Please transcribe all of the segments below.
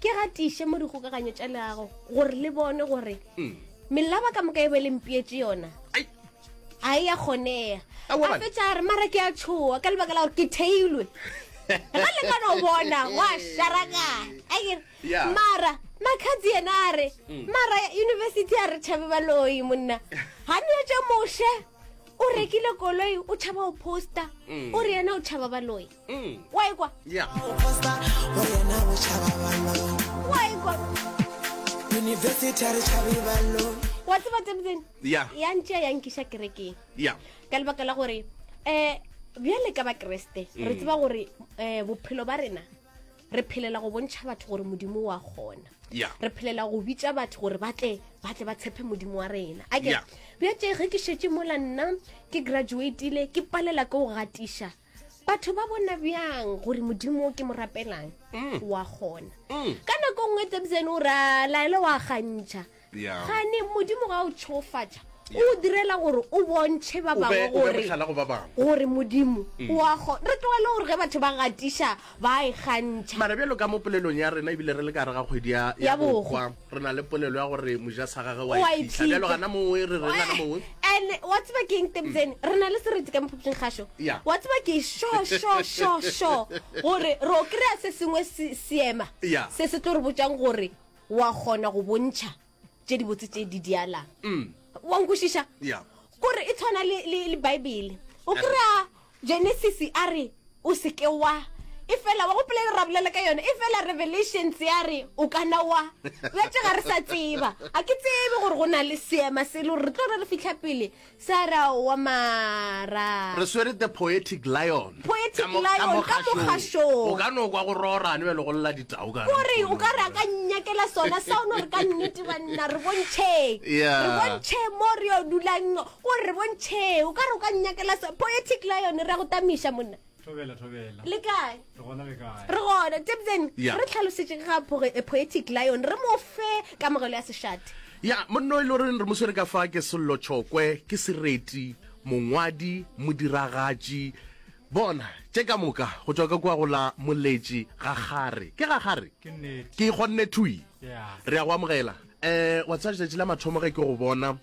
ke gatiše mo dikgokaganyo tša leago gore le bone gore mm. melaba ka moka e be le mpietse yona a e ya kgonega a fetsa a re mara ke a tshoa ka lebaka la gore ke theilwe ga le ka no bona wa sharakana mara makhatsi yena a re mm. mara university a re tšhabe baloi monna ga ne tse moshe o rekile koloi o tšhaba o poster mm. o re yena o tšhaba baloi mm. wa ikwa yeah. university a re tšhabe ballo wa tseba tebetsene ya ntšea ya nkiša kerekeng ka lebaka la gore um bjale ka bakeresete re mm. tseba gore um bophelo ba rena re phelela go bontšha batho gore modimo wa kgona re phelela go bitša batho gore batle batle ba tshepe modimo wa rena ake bja tše ge ke šetse mola nna ke graduatile ke palela ke go gatiša batho ba bona bjang gore modimo ke mo rapelang mm. wa gona mm. ka nako nngwe tsebisene o ra laele wa gantšha gane modimo ga o tšhofatša o direla gore o bontšhe ba bangwe gore modimo mm. wa gona re tlogele gore ge batho ba gatiša ba a e kgantšha. Mara bjalo ka mo polelong ya rena, e bile re le ka gare ga kgwedi ya, ya, ya Bokgwa, re na le polelo ya gore moja sa gage wa e phihla. Bjalo gana mongwe, re reng gana mongwe. And wa tseba ke eng Tebzeni? Mm. Re na le sereti ka mophuphing ga sho. Yeah. Wa tseba ke sho, sho, sho, sho, gore ro kry-a se sengwe seema yeah. se se tlo re botjang gore wa kgona go bontšha tše dibotse tše di dialang mm. wa nkwešiša yeah. kore e tshwana le, le, le baebele o kry-a genesis a re o seke wa e fela wa gopela e ra bolela ka yone e fela revelations ya re o kana wa bjatse ga re sa tseba a ke tsebe gore go na le seema selo re tlo re re fitlha pele Sara wa mara. Re swere The Poetic Lion. Poetic Ka mo- ka Lion, mo ka mo kgašong. kgašong. O ka no kwa go rorane bjale go lla ditau ka Kore nkgono. o ka re a ka nnyakela sona sa o no re ka nnete banna re bontšheng. Yeah. Re bontšheng mo re yo dulang o re bontšheng o ka re o ka nnyakela sona. Poetic Lion re a go tamiša monna. thobela thobela le kae re gona le kae re gona tebzen yeah. re tlhalosetse ga eh, poetic lion re mo fe kamogelo ya seshate ya yeah, monno e le goreng re mo swere ka fa ke sello tšhokwe ke sereti mongwadi modiragatši bona tše ka moka go tswa ka kwa go la moletši ga gare ke ga gare ke kgonne thui yeah. re ya go amogela um wa tsaya letšatši la mathomo ge ke go bona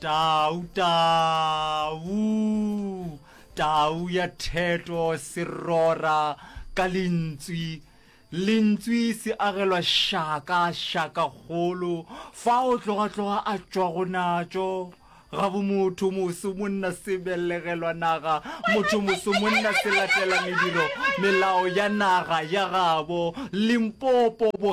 Tau, tau, tau ya theto se rora ka lentswi. Lentswi se agelwa šaka, šaka kgolo, fa o tloga-tloga a tšwa go natšo. Ga bo motho moso monna se belegelwa naga, motho moso monna se latela mediro, melao ya naga ya gabo. Limpopo bo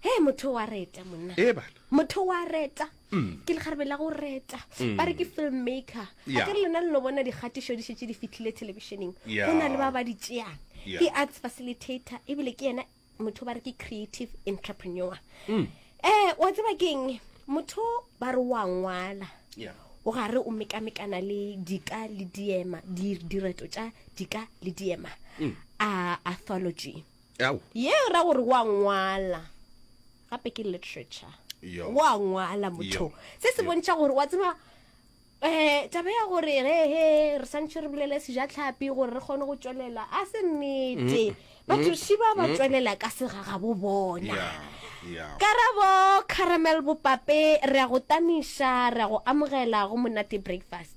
he motho wa reta monna ee bana motho wa reta mm. ke legarebe la go reta mm. ba re ke filmmaker a ke re lena le no bona dikgatišo di šetse di fitlhile thelebišeneng go na le ba ba di tšeang ke arts facilitator ebile ke yena motho ba re ke creative entrepreneur um wa tseba keng motho ba re wa ngwala o gare o mekamekana le dika le diema direto tša dika le diema a athology ye ra gore wa ngwala gape ke literature wa ngwala motho se se bontšha gore wa tseba um taba ya gore gehe re santšhe re bolele sejatlhapi gore re kgone go tswelela a se nnete batho šiba ba tswelela ka segagabo bona karabo caramel bopape re ya go tamiša re ya go amogela go monate breakfast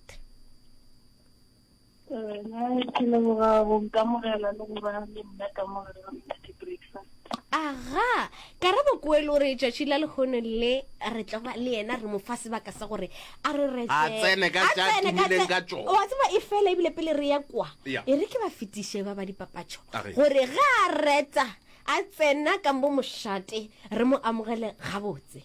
aga karabo koelo re tšatši la lekgono le re tlo ba le yena re mo fa sebaka sa gore a re re A tsene ka tša tumileng ka tšona. wa tseba e fela ebile pele re ya kwa Ya. e re ke ba fetiše ba ba dipapatšo A re. gore ga a reta a tsena kambo mošate re mo amogele gabotse